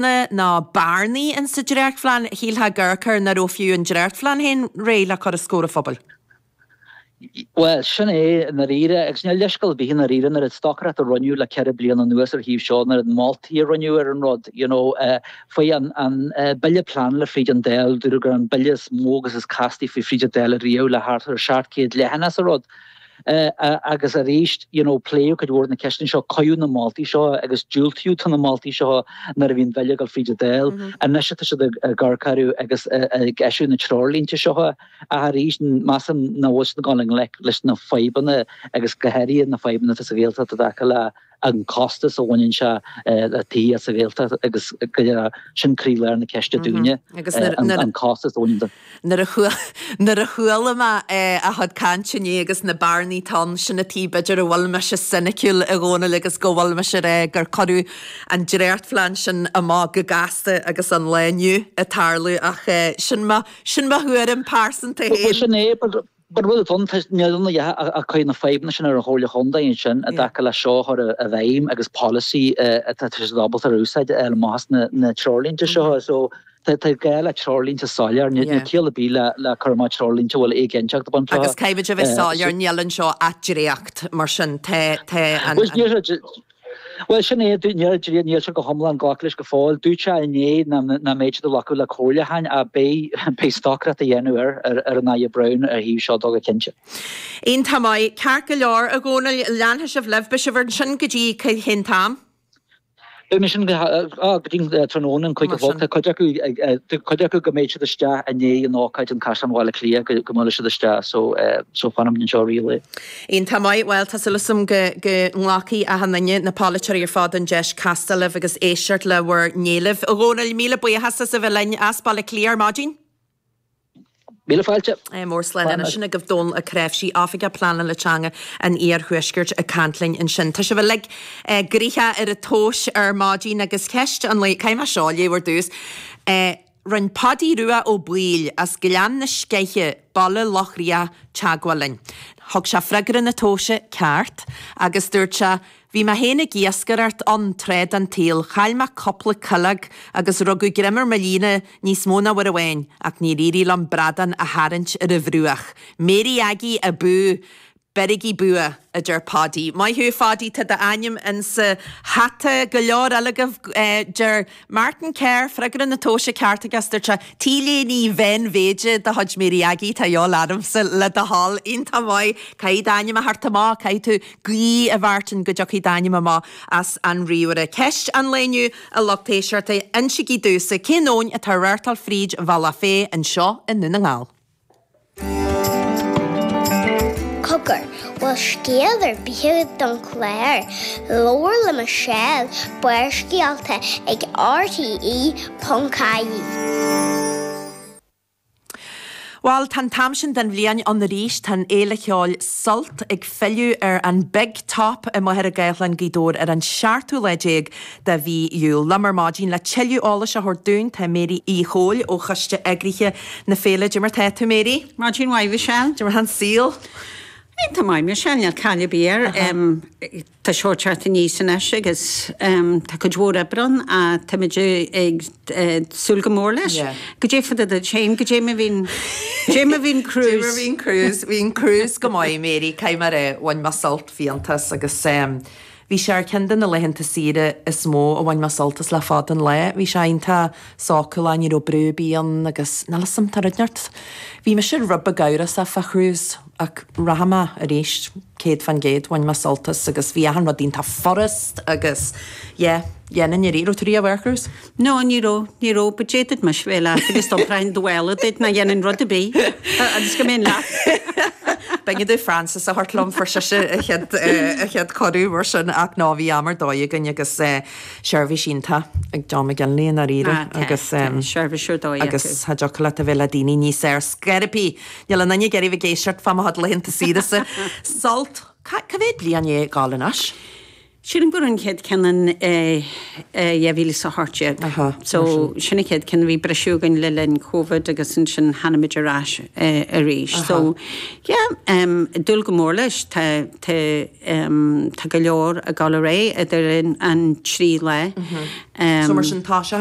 céanna na bearnaí in sa dréachtphlean, shílfeá gur cur nach raibh fiú an dréachtphlean féin réidh le cur os comhair an phobail. Bhuel, sin é i ndáiríre, agus níl leithscéal ar bith i ndáiríre, an oiread stocaireacht a rinneadh le ceithre bliana anuas ar thaobh seo, an oiread moltaí a rinneadh ar an rud, you know, chuaigh an an Bille Pleanála fríd an Dáil, dúradh gur an Bille is mó agus is castaí a chuaigh fríd an Dáil riamh le thart ar 700 leathanaigh sa rud. Agus arís, you know, pléadh cuid mhór de na ceisteanna seo, cuireadh na moltaí seo agus diúltaíodh do na moltaí seo nuair a bhí an bille ag dul fríd an Dáil. Anois tá siad ag garcháiriú agus ag eisiúint na treoirlínte seo ach arís measaim nach bhfuil siad ag dul i ngleic leis na fadhbanna agus go háirithe na fadhbanna atá sa Ghaeltacht i dtaca le an costas a bhaineann sé le tithe sa Ghaeltacht agus go léir, sin croílár na ceiste dúinne, an costas a bhaineann dó. Nuair a chuala mé a chuid cainte inné agus na bearnaí atá ann, sin an taobh b'fhéidir a bhfuil mise soiniciúil, a Dhónaill, agus go bhfuil mise ag rá gur cuireadh an dréachtphlean sin amach go gasta agus an lá inniu ag tarlú ach sin mo thuairim pearsanta féin. Bhuel, sin é. An bhfuil buntáiste mionlaigh a chuirfidh na fadhbanna sin ar an Chomhairle Contae ansin i dtaca leis seo a chur i bhfeidhm agus polasaí atá siad ábalta a úsáid ar maitheas na treoirlínte seo? So tá gá le treoirlínte soiléir. Níl ciall ar bith le cur amach treoirlínte a bhfuil éiginnteacht ag baint leo. Agus caithfidh a bheith soiléir, níl anseo ach dréacht, mar sin tá an. Bhuel, sin é. Níl ann ach dréacht, níl sé go hiomlán glactha leis go fóill. Dúirt sé inné nach mbeidh siad ag glacadh le comhairliúcháin ach beidh stocaireacht á dhéanamh ar ar an Aire Browne ar thaobh seo dó go cinnte. Iontach maith. Ceart go leor, a Dhónaill, leanfaidh sibh libh. Beidh sibh ansin go dtí cén t-am? Beidh mé ansin go dtí tráthnóna, an cúig a chlog. Tá cuid acu, cuid acu go mbeidh siad isteach i ndiaidh an ócáid in Caisleán Bhaile Átha Cliath go mbuailfidh siad isteach so fanfaimid anseo i rith an lae. Iontach maith, bhuel, tá súil agam go nglacfaidh achan duine, na polaiteoirí ar fad, an deis castáil libh agus éisteacht le bhur n-éilimh. A Dhónaill, míle buíochas as a bheith linn as Baile Átha Cliath ar maidin. Míle fáilte. Mór slán Slán anois agus. sin agaibh. Dónall Ó Cnáimhsí, Oifigeach Pleanála Teanga an Iarthuaiscirt ag caint linn ansin. Tá sibh uilig eh gnoitheach ar an tomhais ar maidin agus ceist an lae, caithfidh mé seo a léamh ar dtús. Eh. Rinn Páidí Rua Ó Baoill as Gleann na Sceiche, Baile Locha Riach, teagmháil linn. Thug sé freagra na tomhaise ceart agus dúirt sé, Bhí mé féin ag iascaireacht ann tráth den tsaol, chaill mé cúpla cuileog agus rugadh greim ar mo líne níos mó ná uair amháin ach níor éirigh liom bradán a tharraingt ar an bhruach. Mary Aggie abú! Beirigí bua, a deir Páidí. Maith thú, a Pháidí, tá d'ainm insa hata go leor eile agaibh. Deir Martin Kerr, freagra na tomhaise ceart aige, is dúirt sé, T-léine mheánmhéide de chuid Mary Aggie atá a dhíobháil ormsa, le do thoil. Iontach maith. Caithfidh d'ainm a theacht amach, caithfidh tú guí, a Mhartin, go dtiocfaidh d'ainm amach as an ríomhaire. Ceist an lae inniu, a lucht éisteachta, insigí domhsa cén abhainn atá ag reáchtáil fríd Bhealach Féich anseo i nDún na nGall. Cogar, bhfuil scéal ar bith agat don chlár, Labhair le Michelle, Barrscéalta ag RTE.ie. Bhuel, tá an t-am sin den bhliain ann arís, tá an fhéile cheoil Sult ag filleadh ar an Big Top i Machaire Gathlán, Gaoth Dobhair ar an seachtú lá déag de mhí Iúil. Liom ar maidin le tuilleadh eolais a thabhairt dúinn tá Mary Uí Chomhaill ó choiste eagraithe na féile. Cad é mar tá tú Mary? Maidin mhaith Mhichelle. Cad é mar tá an saol? Tá maith Michelle, níl caill ar bith air. Tá Sult ag teacht aníos anois agus tá cuid mhór oibre ann ach táimid ag súil go mór leis. Cad é fá dtaobh duit féin, cad é mar a bhí an, cad é mar a bhí an cruise. Cad é mar a bhí an cruise, bhí an cruise go maith Mary, caithfidh mé a rá, bhain mé sult fiánta as agus Bhí sé ar cheann de na laethanta saoire is mó a bhain mé sult as le fada an lá. Bhí sé iontach sócúlach, ní raibh brú ar bith ann agus, níl a fhios agam, tá rud inteacht. Bhí mise rud beag amhrasach fá cruise ach rachaidh mé arís, céad fán gcéad, bhain mé sult as agus bhí achan rud iontach furast agus, yeah, dhéanfainn arís. Raibh tú riamh ar cruise? No, ní raibh, ní raibh, but d'fhéadfad mise bheith leat agus tá práinn do bhaile duit nach dhéanfainn rud ar bith agus go mbeinn leat. B'éigean dom Frances a thabhairt liom, fuair sise a chéad, a chéad cuireadh mar sin ach ná bhí am ar dóigh againn agus seirbhís iontach ag John McGinley i ndáiríre agus, eh, seirbhís ar dóigh acu agus cha dtiocfadh leat a bheith le daoine níos fearr, ar scor ar bith, níl aon duine ag iarraidh bheith ag éisteacht fá mo chuid laethanta saoire sa, sult, cá, cá mhéad bliain é ag gabháil anois? Sílim go raibh an chéad cheann in 2018 so sin an chéad cheann, bhí briseadh againn le linn Covid agus ansin tháinig muid ar ais arís so yeah, dúil go mór leis, tá go leor ag dul ar aghaidh idir an trí lá. So mar sin tá sé.